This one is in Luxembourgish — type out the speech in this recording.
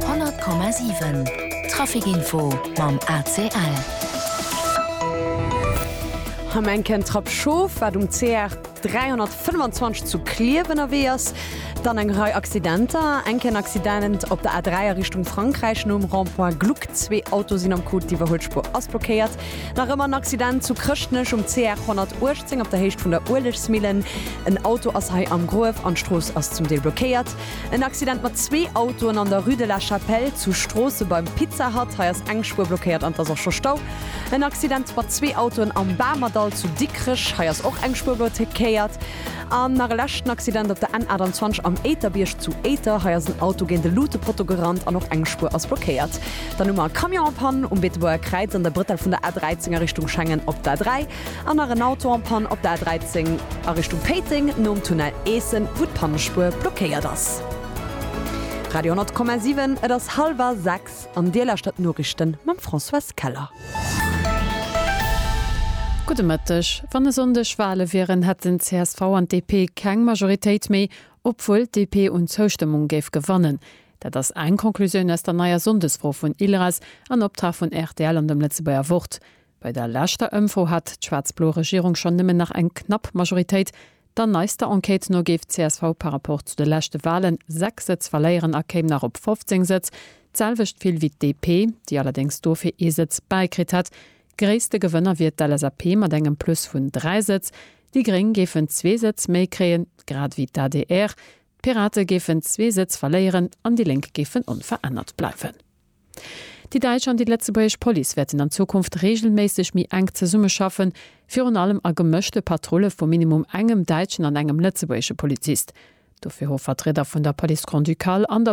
100,7 Trafic Info mam ACL. Am enken Trapp Schof, wat um CR 325 zu Clierf ënnerwee ass, dann eng Rei Accidenter. Enken Accident op der A3 a Richtung Frankräich nom Rond-point Gluck. Zwee Auto sinn am Coup, d'Iwwerhuelspur ass blockéiert. Nach ëmmer en Accident zu Chrëschtnech um CR 118 op der Héicht vun der Uelegsmillen. En Auto ass hei am Gruef an d'Strooss ass zum Deel blockéiert. En Accident mat zwee Autoen an der Rue de la Chapelle zu Stroossen beim Pizza Hut. Hei ass eng Spuer blockéiert an et ass och scho Stau. En Accident mat zwee Autoen am Bamerdall zu Dikrech. Hei ass och eng Spuer blotékéiert. An nach e leschten Accident op der N 28 am Éiterbierg zu Éiter. Hei ass en Auto géint e Lutepotto gerannt an och eng Spuer ass blockéiert. Dann hu mer e Camion en panne um Beetebuerger Kräiz an der Brëttel vun der A 13 a Richtung Schengen op der A 3. An nach en Auto en panne op der A13 a Richtung Péiteng nom Tunnel Eessen, wou d'Pannespuer blockéiert ass. Radio 10,7 Et ass hallwer 6 an Dir lauschtert d'Noriichte mam Françoise Keller. Gudde Mëtteg. Wann e Sonndeg Wale wieren, hätten csv an DP keng Majoritéit méi, obwuel d'DP un Zoustëmmung géif gewannen. Dat ass eng Conclusioun aus der neier Sonndesfro vun ILRAS an Optrag vun rtl an dem Lëtzebuerger Wort. Bei der leschter Ëmfro hat d'schwaarz-blo Regierung schonn nëmmen nach eng knapp Majoritéit. Der neister Enquête no géif csv par Rapport zu de leschte Walen 6 Sëtz verléieren a kéim nach op 15 Sëtz, d'selwecht vill wéi d'DP, déi allerdéngs dofir ee Sëtz bäikritt hätt. Gréisste Gewënner wier d'LSAP mat engem Plus vun 3 Sëtz. Déi Gréng géifen zwee Sëtz méi kréien, grad ewéi d'ADR. D'Pirate géifen zwee Sëtz verléieren an déi Lénk géifen onverännert bleiwen. Déi däitsch an déi lëtzebuergesch Police wäerten an Zukunft reegelméisseg méi enk zesummeschaffen, virun allem a gemëschte Patrulle vu minimum engem däitschen an engem lëtzebuergesche Polizist. Dofir hu Vertrieder vun der Police Grand-Ducale an der.